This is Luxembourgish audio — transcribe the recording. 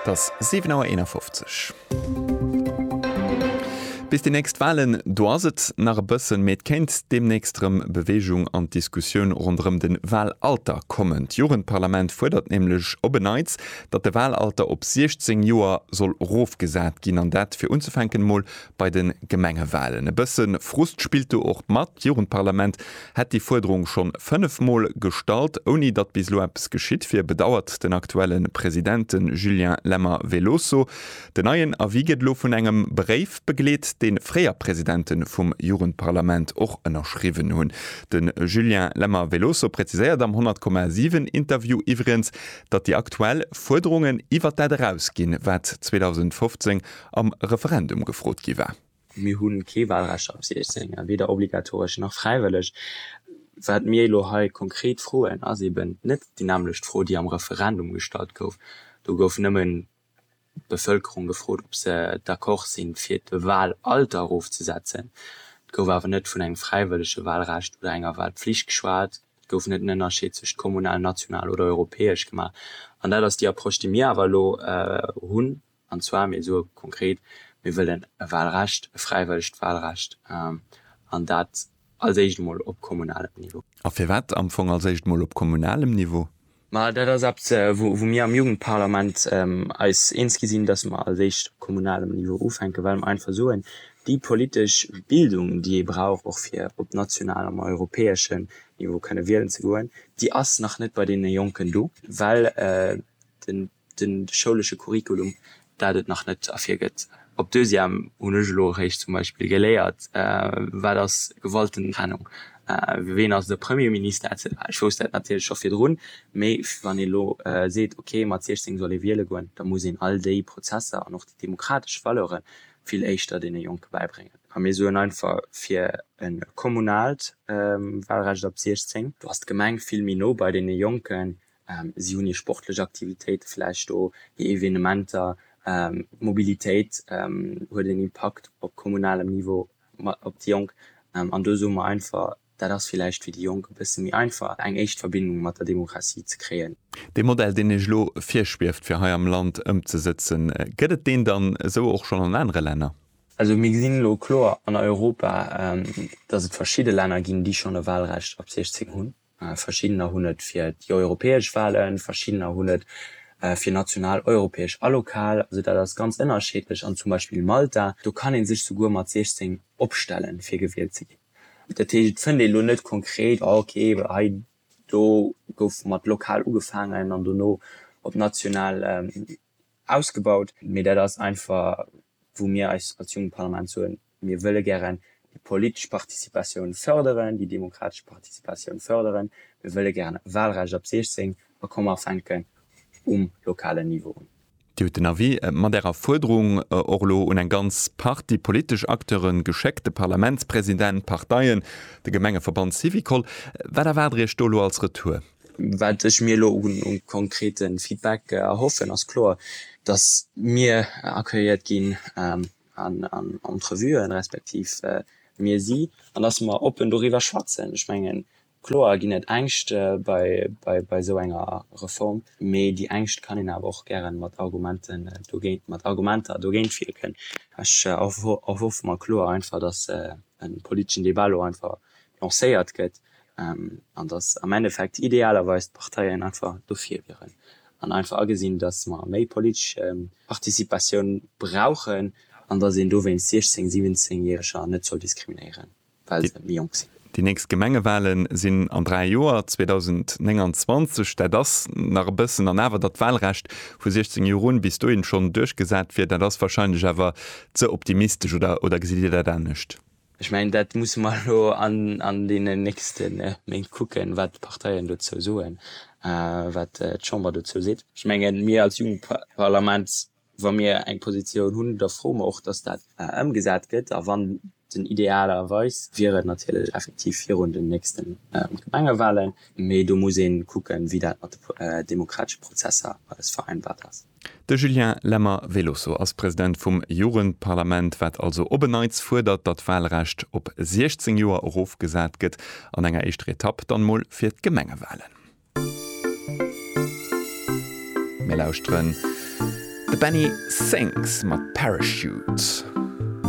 Et ass 7 Auer 51. Bis déi nächst Wahlen, do ass et nach e bëssen, mee et kéint deemnächst erëm Beweegung an d'Diskussioun ronderëm de Wahlalter kommen. D'Jugendparlament fuerdert nämlech op en Neits, datt de Wahlalter op 16 Joer soll erofgesat ginn, an dat fir unzefänken emol bei de Gemengewalen. E bësse Frust spillt do och mat. D'Jugendparlament hätt déi Fuerderung scho fënnef Mol gestallt, ouni datt bis elo eppes geschitt wier, bedauert den aktuelle President, de Julien Lemmer-Veloso. Den neien Avis gëtt elo vun engem Bréif begleet, dee fréier Presidente vum Jugendparlament och ënnerschriwwen hunn. De Julien Lemmer-Veloso präziséiert am 100, 7 Interview iwwregens, datt déi aktuell Fuerderungen iwwert dat erausginn, wat 2015 am Referendum gefrot gi war. Mir hu kee Wahlrecht ab 16, weder obligatoresch nach fräiwëlleg. Wat mir elo hei konkret froen, ass eben net déi nämmlecht Fro, déi am Referendum gestallt gouf. Do gouf nëmmen d'Bevëlkerung gefrot, ob se d'accord sinn, fir d'Wahlalter erofzesetzen. Et gouf awer net vun engem fräiwëllege Wahlrecht oder enger Wahlpflicht geschwat. Et gouf net en Ënnerscheed tëscht kommunal, national oder europäesch gemaach. An dat ass déi Approche, déi mir awer elo hunn. An zwar, mir soe konkret, mir wëllen e Wahlrecht, e fräiwëllegt Wahlrecht, an dat als éischt emol op kommunalem Niveau. A firwat am Fong als éischt emol op kommunalem Niveau? Ma dat ass eppes, wou mir am Jugendparlament eis eens gi sinn, dass mer als éischt op kommunalem Niveau ufänken, well mer einfach soen, déi politesch Bildung, déi ee brauch och fir op nationalem a europäeschem Niveau kënne wielen ze goen, déi ass nach net bei deene Jonken do, well den de schoulesche Curriculum, dat et nach net ervirgëtt. Op Deuxième hunn ech elo eréischt zum Beispill geléiert, wat ass Gewaltentrennung, ween ass de Premierminister etc. Ech wousst dat natierlech scho virdrun, mee wann ee elo seet, ok mat 16 soll ee wiele goen, da muss een all déi Prozesser an och déi demokratesch Valeure vill éischter deene Jonke bäibréngen. A mir soen einfach fir e kommunaalt Walrecht ab 16, do ass d'Gemeng vill méi no bei deene Jonken, Si hunn hir sportlech Aktivitéite vläicht do, hir Evenementer. D'Mobilitéit huet en Impakt op kommunalem Niveau op déi Jonk. An do soe mer einfach, dat ass vläicht fir déi Jonk e bësse méi einfach, eng éischt Verbindung mat der Demokratie ze kréien. Dee Modell, deen Iech elo virschwieft fir hei am Land ëmzesëtzen, gëtt et deen dann esou och schonn an anere Länner? Also mir gesinn elo kloer an Europa, datt et verschidde Länner ginn, déi schonn e Wahlrecht ab 16 hunn. Verschiddener hunn et fir déi europäesch Walen, verschiddener hunn et fir national, europäesch a lokal. Also dat ass ganz ënnerscheedlech. An zum Beispill Malta, do kann ee sech souguer mat 16 opstellen, fir gewielt ze ginn. Dat heescht, et fënnt ee lo net konkret, ah okay, hei do gouf mat lokal ugefaangen an dono op national ausgebaut. Mee dat ass einfach, wou mir eis als Jugendparlament soen, Mir wëlle gären déi politesch Participatioun fërderen, déi demokratesch Participatioun fërderen. Mir wëlle gären e Wahlrecht ab 16 a komme fänken um lokalen Niveau un. Dir hutt den Avis mat Ärer Fuerderung och elo un eng ganz Partie politesch Acteuren geschéckt, de Parlamentspräsident, d'Parteien, de Gemengeverband Syvicol. Wat erwaart Der Iech do elo als Retour? Wat ech mir elo u konkrete Feedback erhoffen, ass kloer, dass mir accueilliert ginn an Entrevuen, respektiv mir si an datt mer oppen doriwwer schwätzen. Ech mengen, kloer ginn et Ängscht bei esou enger Reform, mee déi Ängscht kann een awer och gäre mat Argumenten dogéint, mat Argumenter dogéint wierken. Ech erhoffe mer kloer einfach, datt e politeschen Debat elo einfach lancéiert gëtt an datt am Endeffekt idealerweis d'Parteien einfach dofir wieren an einfach agesinn, datt mer méi politesch Participatioun brauchen an datt een dowéinst 16 Siwwenzéngjäreger net soll diskriminéieren, well se méi jonk sinn. Déi nächst Gemengewahle sinn an dräi Joer, 2029. Dat ass nach e bëssen. An awer, datt d'Wahlrecht vu 16 Joer un bis dohin schonn duerchgesat wier, dat ass wahrscheinlech awer ze optimistesch, oder gesitt Dir dat anescht? Ech mengen, dat musse mer elo an deenen nächste Méint kucken, wat d'Parteien dozou soen, wat d'Chamber dozou seet. Ech mengen, mir als Jugendparlament, wa mir eng Positioun hunn, da froe mer och, dass dat ëmgesat gëtt. A wann den, idealerweis wier et natierlech effektiv virun den nächste Gemengewahlen, mee do muss ee kucken, wéi dat mat de demokratesche Prozesser alles vereinbart ass. De Julien Lemmer, Velosso, ass President vum Jugendparlament, wat also op en Neits fuerdert, datt d'Walrecht op 16 Joer erofgesat gëtt, an enger éischter Etapp dann mol fir d'Gemengewalen. Mir lauschteren de Benny Sings mat Parachute.